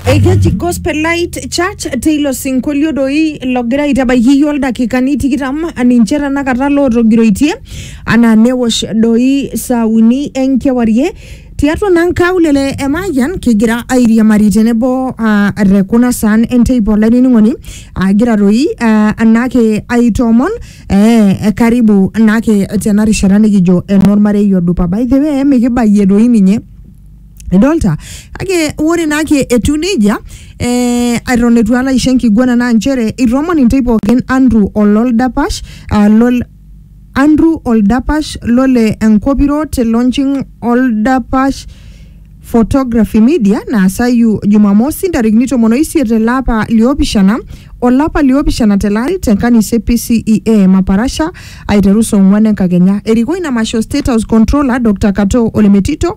Ekeji Gospel Light Church teilo sinkolio doi logira aitabaiki iyiook ildakikani tikitam ninche tenakata lootogiroitie anaa newosh doi saa uni enkewarie tiatua naa nkaulele e Mayian kigira airiamari tenebo ah, te kuna saan enteipa olainining'oni agira doi ah, naake aitoomon eh, karibu naake tena rishata nikijo enormarei odupa by the way mikibayie doi ninye Idolta kake ore naake etiu neijia eh, eton eitu alo aisho enkiguana naa nchere itomon intae pookin Andrew ololdapash ah, lol Andrew oldapash lole enkopiro te launching oldapash photography media naasayu jumamosi ntarikini tomon oisiet ele apa liopishana olapa liopishana tele ari te kanisa e PCEA Maparasha aiteru saa ong'wan enkakenya. Erikoo ina masho State House Controller Dr Katoo Olemetito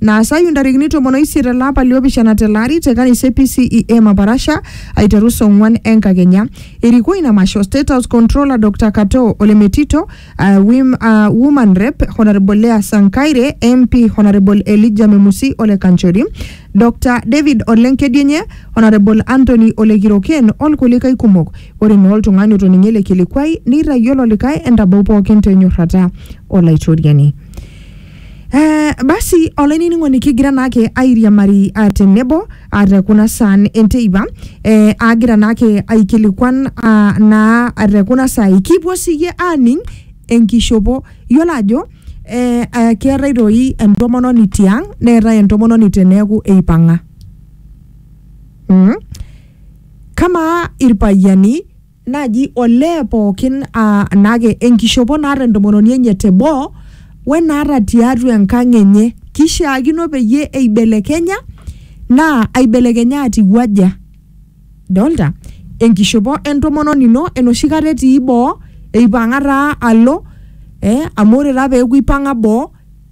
Naasayu ntarikini tomon oisiet ele apa liopishana tele ari te kanisa e PCEA Maparasha aiteru saa ong'uan enkakenya. Erikoo ina masho State House Controller Dr Katoo Ole Metito, ah, wim- ah, Woman Rep Honourable Leah Sankaire, MP Honourable Elijah Memusi Ole Kanchori, Dr David Ole Nkedienye, Honourable Anthony Ole Kiroken olkulikae kumok. Ore naa oltung'ani otoning'o ele kilikuai neitayiolo likae entabau pookin te nyorrata Olaitoriani. Eh, basi olainining'oni kigira naake airiamari ah, tenebo ah, te kuna saan enteipa eh, agira naake aikilikuan ah, naa ah, te kuna saai kipuo siyie aaning enkishopo yiolo ajo eh, ah, keetae toi entomononi tiang neetae entomononi teneeku eipang'a mm? kamaa irpayiani naaji olee pookin aa naake enkishopo naata entomononi enye teboo wenaata tiatua enkang enye kishiakino peyie eibelekenya naa aibelekenya atiu aja dolta enkishopo entomononi ino enoshi kata etii boo eipang'a taa alo eh, amu ore taa peeku ipang'a boo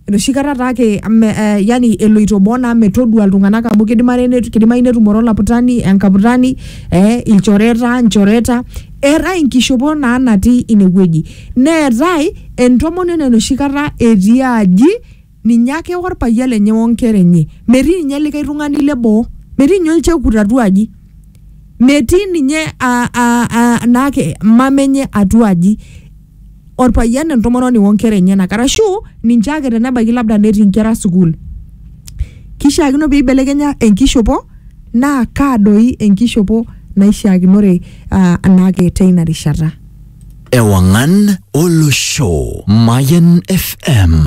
enoshi kata taake me, eh, yani eloito boo naa metodua iltung'anak amu kidimare netu- kidimayu netumore olaputani enkaputani eh, ilchoreta nchoreta eetae inkishopo naa natii inewueji neetae entomononi enoshi kata etii aji ninye ake orpayian lenye onkera enye metii ninye likae tung'ani leboo metii ninye olchekut atua aji metii ninye a- a- a- naake mama enye atua aji orpayian entomononi onkera enyenak arashu ninche ake tenebaiki labda netii inkera sukuul kishiakino peibelekenya enkishopo naa kaa doi enkishopo naishiakinore uh, anaake teina rishata Ewangan Olosho. Mayan FM.